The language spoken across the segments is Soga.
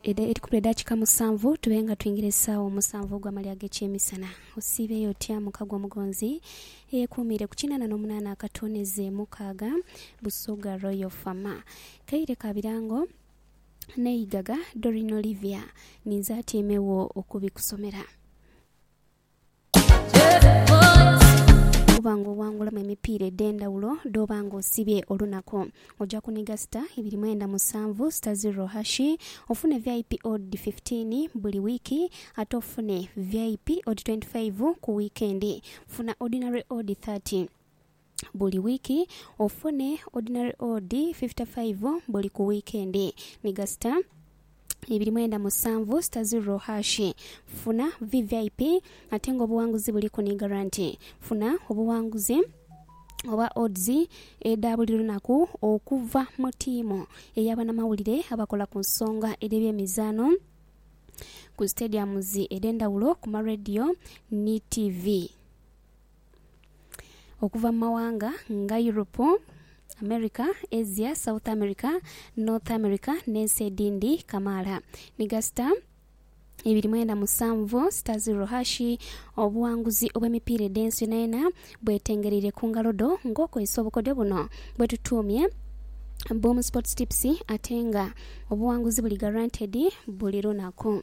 Edha edhikulu edha kika musanvu tube nga twingira esaawa omusanvu ogw'amali ag'ekyemisana. Osiibeeyo otya muka gwo mugonzi eyekuumiire ku kinaana n'omunaana akatooneze mukaaga, Busoga Royal Fama, Kaire ka Birango n'eigaga Doreen Olivia ninze atyaime wo okubikusomera. Bwoba nga owangulamu emipiira edh'endhawulo dh'oba nga osibye olunaku, oja kuniga sita ibiri mwenda musanvu, sita zirro hashi, ofune vip odd fifteen buli wiiki ate ofune vip odd twenty five ku wiikendi. Funa Ordinary odd thirty. buli wiiki ofune ordinary odd fifty five buli ku wiikendi ni gasita ibiri mwenda musanvu sita zirro haashi. Funa VVIP ate nga obuwanguzi buliku ni garanti. Funa obuwanguzi oba odds edha buli lunaku okuva mu ttiimu eya banamawulire abakola ku nsonga edh'ebyemizaano ku stadiums edh'endhawulo ku ma radio ni tivi. okuva mu mawanga nga Yuropu, Amerika, Asia, South Amerika, North Amerika n'ensi edhindi kamaala ni gasita ibiri mwenda musanvu sita ziro hashi. Obuwanguzi obw'emipiira edh'ensi yonayona bwetengereire ku ngalo dho ng'okozesa obukodyo buno bwe tutuumye Boom Sports Tips ate nga obuwanguzi buli guaranteed buli lunaku.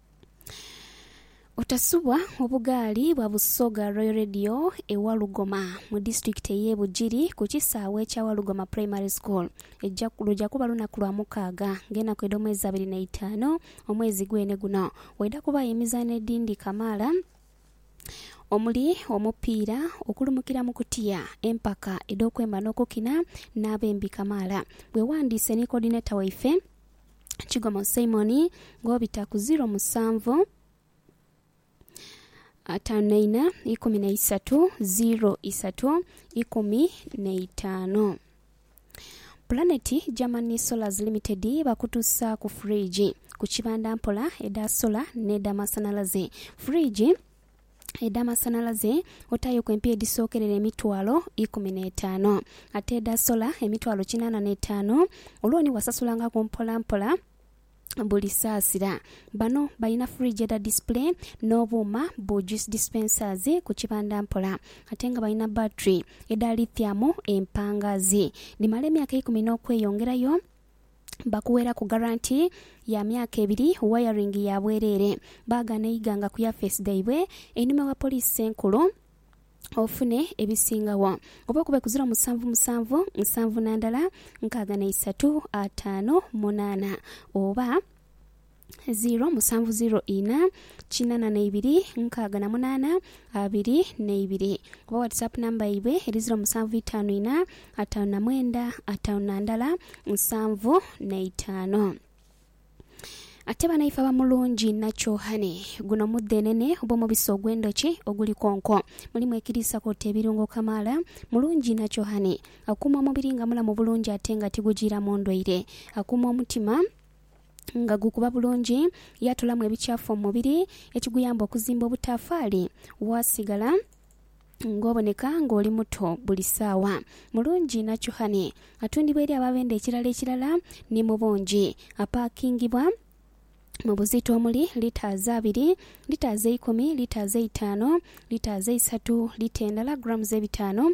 Otasubwa obugaali bwa Busoga Royal Radio e Walugoma mu disitulikiti ey'e Bugiri ku kisaawe kya Walugoma Primary School eja luja kuba lunaku lwa mukaaga ng'enaku edh'omwezi abiri n'eitaanu omwezi gwene guno waidha kubaayo emizaano edhindi kamaala omuli omupiira, okulumukira mu kutiya, empaka edh'okwemba n'okukina n'abembi kamaala. Weewandiise ni Coordinator waife. Kigomo Simoni ng'obita ku ziro musanvu, ataanu na ina, ikumi na isatu, ziro isatu, ikumi na itaanu. Pulaneti Germany Solars Limited bakutusaaku fridge ku kibanda mpola edha sola n'edha masanalaze. Fridge. edh'amasanhalaze otaireku empiiya edhisookerera emitwalo ikumi n'etaanu, ate edha sola emitwalo kinaana n'etaanu. Looni wasasulangaku mpolampola buli saasira. Bano balina fridge edha display n'obuuma bu juice dispensers ku kibanda mpola ate nga balina battery edha lithium empangaazi dhimala emyaka ikumi n'okweyongerayo. bakuweraku garanti ya myaka ebiri wayaringi ya bwereere baagaana eiganga ku yafeesi dhaibwe einhuma wa poliisi enkulu ofune ebisingagho oba okube ku ziro musanvu musanvu nsanvu na ndala nkaaga na isatu ataano munaana oba ziro musanvu ziro ina kinana na ibiri nkaaga na munana abiri na ibiri oba whatsapp number yaibwe eri ziro musanvu itano ina atano na mwenda atano na ndala nsanvu na itano. Ate banaife abamulungi nakyohane guno mudhenene oba omubisi ogwendhoki oguli konko mulimu ekiriisa kwoota ebirungo kamaala mulungi nakyohane akuuma omubiri nga mulamu bulungi ate nga tigujiiramu ndwaire akuuma omutima nga gukuba bulungi, yaatolamu ebikyafu omu mubiri ekiguyamba okuzimba obutaafaali. Waasigala ng'oboneka ng'oli muto buli saawa. Mulungi Nachuhani atundibwa eri ababenda ekirala ekirala ni mu bungi. Apaakingibwa mu buzito omuli litaazi abiri, litaazi eikumi, litaazi eitaano, litaazi eisatu, lita endala, grams ebitaano,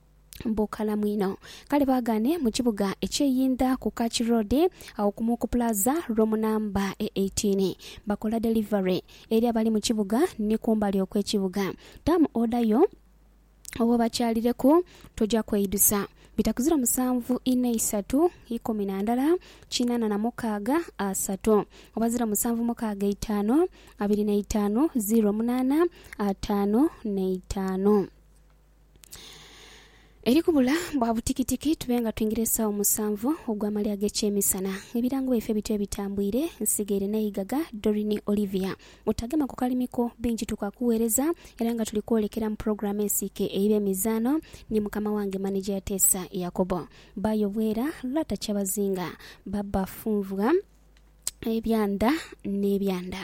bukalamu inho. Kale baagaane mu kibuga eky'e Yinda ku Kach Road, agho kumu ku pulaza roomu namba e eighteen. Bakola delivery eri abali mu kibuga ni kumbali okw'ekibuga. Tamu oda yo oba obakyalireku, toja kweidusa. Bitaku ziro musanvu inha isatu ikumi na ndala kinaana na mukaaga asatu oba ziro musanvu mukaaga eitaanu abiri n'eitaanu ziro munaana ataanu n'eitaanu. Eri kubula bwa butikitiki tube nga twingira esaawa musanvu ogw'amalya ag'ekyemisana. Ebirango byaife bityo ebitambwire, nsigaire n'eigaga Doreen Olivia. Otagema ku kalimi ko, bingi tukaakuweereza era nga tuli kwolekera mu pulogulaamu ensiike eya Eby'emizaano ni mukama wange maneja Yateesa Yakobo. Ba Yobwera, Lwata Kyabazinga, Ba Bafunvwa, Ebyanda n'ebyanda.